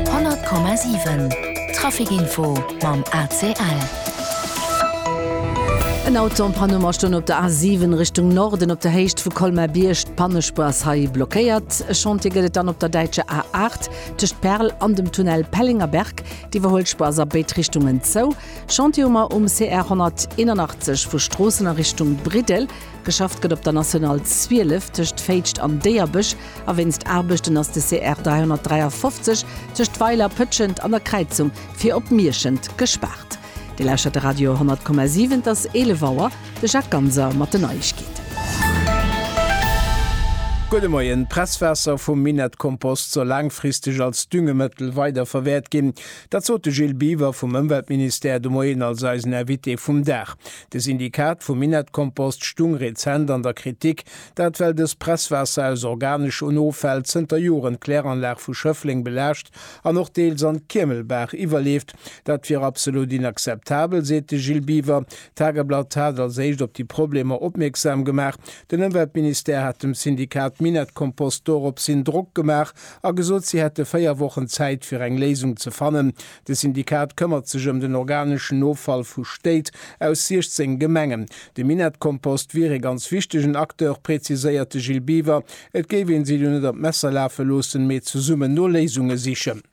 100,7 Traficinfo mam ACL. En Auto am Panne Mer stoen op der A7 Richtung Norden op der Héicht vu Colmar-Bierg. D'Pannespuer ass hei blockéiert. E Chantier gëtt et dann op der däitscher A8 tëscht Perl an dem Tunnel Pellinger-Berg. D'Iwwerhuelspuer ass a béid Richtungen zou. Chantier hu mer um CR 181 vu Stroossen a Richtung Briddel. Geschafft gëtt op der National 12 tëscht Féitscht an Déierbech. a wéinst Aarbechten ass de CR 353 tëscht Weiler, Pëtschent an der Kräizung fir op Mierschent gespaart. Dir lauschtert de Radio 100,7, et ass 11 Auer. De Jacques Ganser mat den Neiegkeeten. Gudde Moien. D'Presswaasser vum Minettkompost soll laangfristeg als Düngemëttel weiderverwäert ginn. Dat sot de Gilles Biwer vum Ëmweltministère de Moien als eisen Invité vum Dag. De Syndikat vum Minettkompost stung rezent an der Kritik, Dat well dëst Presswaasser aus organeschen Offäll zënter Joren d'Kläranlag vu Schëffleng belaascht an och deels an d'Kiemelbaach iwwerleeft. Dat wier absolut inakzeptabel, seet de Gilles Biwer. D'Tageblatt hat als éischt op déi Problemer opmierksam gemaach. Den Ëmweltministère hat dem Syndikat Minett-Kompost doropshin Drock gemaach a gesot, si hätte véier Wochen Zäit fir eng Léisung ze fannen. De Syndikat këmmert sech ëm den organeschen Offall vu Stéit aus 16 Gemengen. De Minettkompost wier ee ganz wichtegen Acteur, präziséiert de Gilles Biwer. Et géif een si do net an d'Messer lafe loossen, mee zesummen no Léisunge sichen.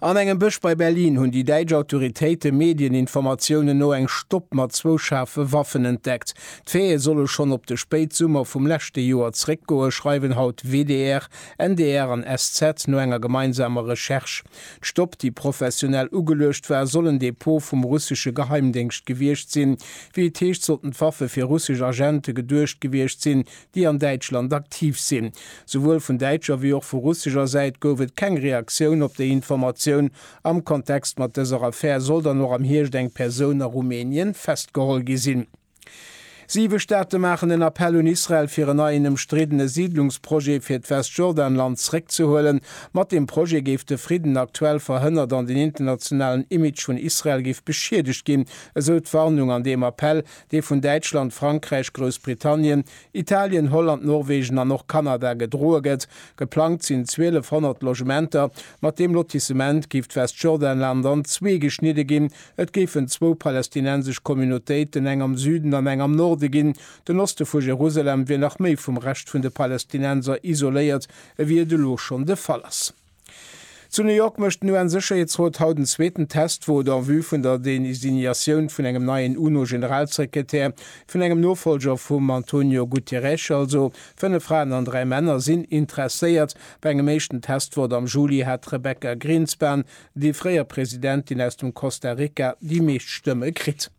An engem Bësch bei Berlin hunn déi däitsch Autoritéite Medieninformatiounen no eng Stopp mat zwou schaarfe Waffen entdeckt. D'Faite solle schonn op de Spéitsummer vum leschte Joer zeréckgoen, schreiwen haut WDR, NDR an SZ, no enger gemeinsamer Recherche. D'Stopp, déi professionell ugeluecht war, soll en Depot vum russesche Geheimdéngscht gewiescht sinn. Wéi et heescht, sollten d'Waffe fir russesch Agente geduecht gewiescht sinn, déi an Däitschland aktiv sinn. Souwuel vun däitscher wéi och vu russescher Säit gouf et keng Reaktioun op déi Informatioun. Am Kontext mat dëser Affär soll dann och am Hierscht eng Persoun a Rumänien festgeholl gi sinn. Siwe Staate maachen en Appell un Israel fir en neien ëmstriddene Siidlungsprojet fir d'Westjordanland zréckzehuelen. Mat deem Projet géif de Fridden aktuell verhënnert an den internationalen Image vun Israel géif beschiedegt ginn, esou d'Warnung an deem Appell, dee vun Däitschland, Frankräich, Groussbritannien, Italien, Holland, Norwegen an och Kanada gedroe gëtt. Geplangt sinn 1.200 Logementer. Mat deem Lotissement géif d'Westjordanland an zwee geschnidde ginn, Et géifen zwou palästinensesch Communautéiten, eng am Süden an eng am Norde ginn. Den Oste vu Jerusalem wier nach méi vum Rescht vun de Palästinenser isoléiert, ewéi et elo schonn de Fall ass. Zu New York mécht den UN-Sécherheetsrot haut en zweeten Test, wou et en vue vun der Designatioun vun engem neien UNO-Generalsekretär, vun engem Nofolger vum Antonio Guterres also, fënnef Fraen an dräi Männer sinn interesséiert. Bei engem éischten Testwort am Juli hat d'Rebecca Grinspan, Déi fréier Presidentin aus dem Costa Rica déi meescht Stëmme kritt.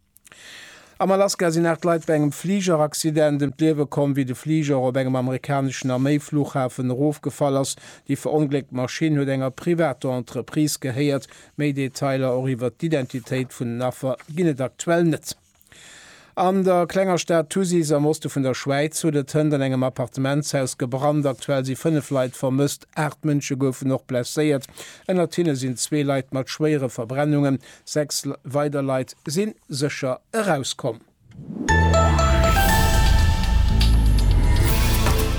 Am Alaska sinn 8 Leit bei engem Fligeraccident ëm d'Liewe komm, wéi de Fliger op engem amerikaneschen Arméi-Fluchhafen erofgefall ass. Déi verongléckt Maschinn huet enger privater Entreprise gehéiert. Méi Detailer, och iwwert d'Identitéit vun den Affer, ginn et aktuell net. An der klenger Stad Thusis am Oste vun der Schwäiz huet et Hënt an engem Appartementshaus gebrannt. Aktuell si 5 Leit vermësst, 8 Mënsche goufen och blesséiert. Ënnert hinne sinn zwee Leit mat schwéiere Verbrennungen. Sechs weider Leit si sécher erauskomm.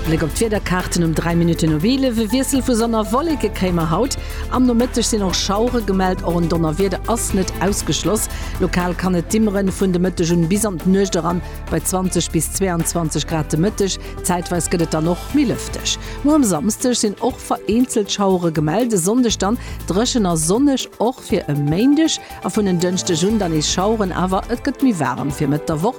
Bléck op d'Wiederkaarten um 3 Minutten of 11, E Wiessel vu Sonn a Wolleke kréie mer haut. Am Nomëtteg sinn och Schauere gemellt, och en Donnerwieder ass net ausgeschloss. Lokal kann et dimmeren, vun de Mëtteg un bis an d'Nuecht eran bei 20 bis 22 Grad de Mëtteg. Zäitweis gëtt et dann och méi lëfteg. Muer um Samsdeg sinn och vereenzelt Schauere gemellt, e Sonndeg dann dréchen a sonneg och fir e Méindeg a vun en Dënschdeg un dann nees Schaueren, awer et gëtt méi waarem fir Mëtt der Woch.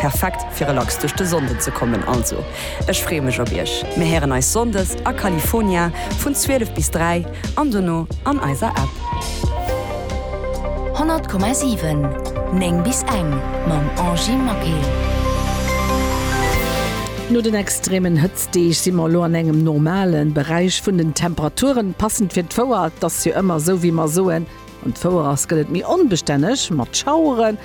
Perfekt fir relax duerch de Sonnden ze kommen. Also ech freeë mech op iech. Mir héieren eis Sonndes a California vun 12 bis 3 an dono an eiser App. 100,7 9 bis eng mam Angy Maquet. No den extremen Hëtztdeeg si mer elo an engem normale Beräich vun den Temperaturen. Passend fir d'Fouer, et ass jo ëmmer esou wéi mer soen, An d'Fouerass gëtt et méi onbestänneg mat Schaueren.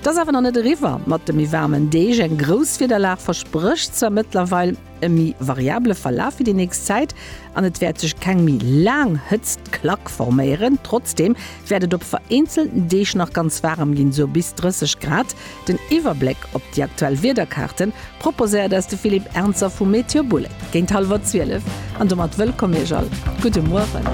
Et ass awer nach net eriwwer mat de méi waarmen Deeg. Eng grouss Wiederlag versprécht zwar mëttlerweil e méi variable Verlaf fir déi nächst Zäit an et wäert sech keng méi laang Hëtztklack forméieren. Trotzdeem wäert et op vereenzelten Deeg nach ganz waarem ginn, sou bis 30 Grad. Den Iwwerbléck op déi aktuell Wiederkaarte proposéiert eis de Philippe Ernzer vu Meteoboule géint hallwer 12. An domat wëllkomm Iech all. Gudde Mueren.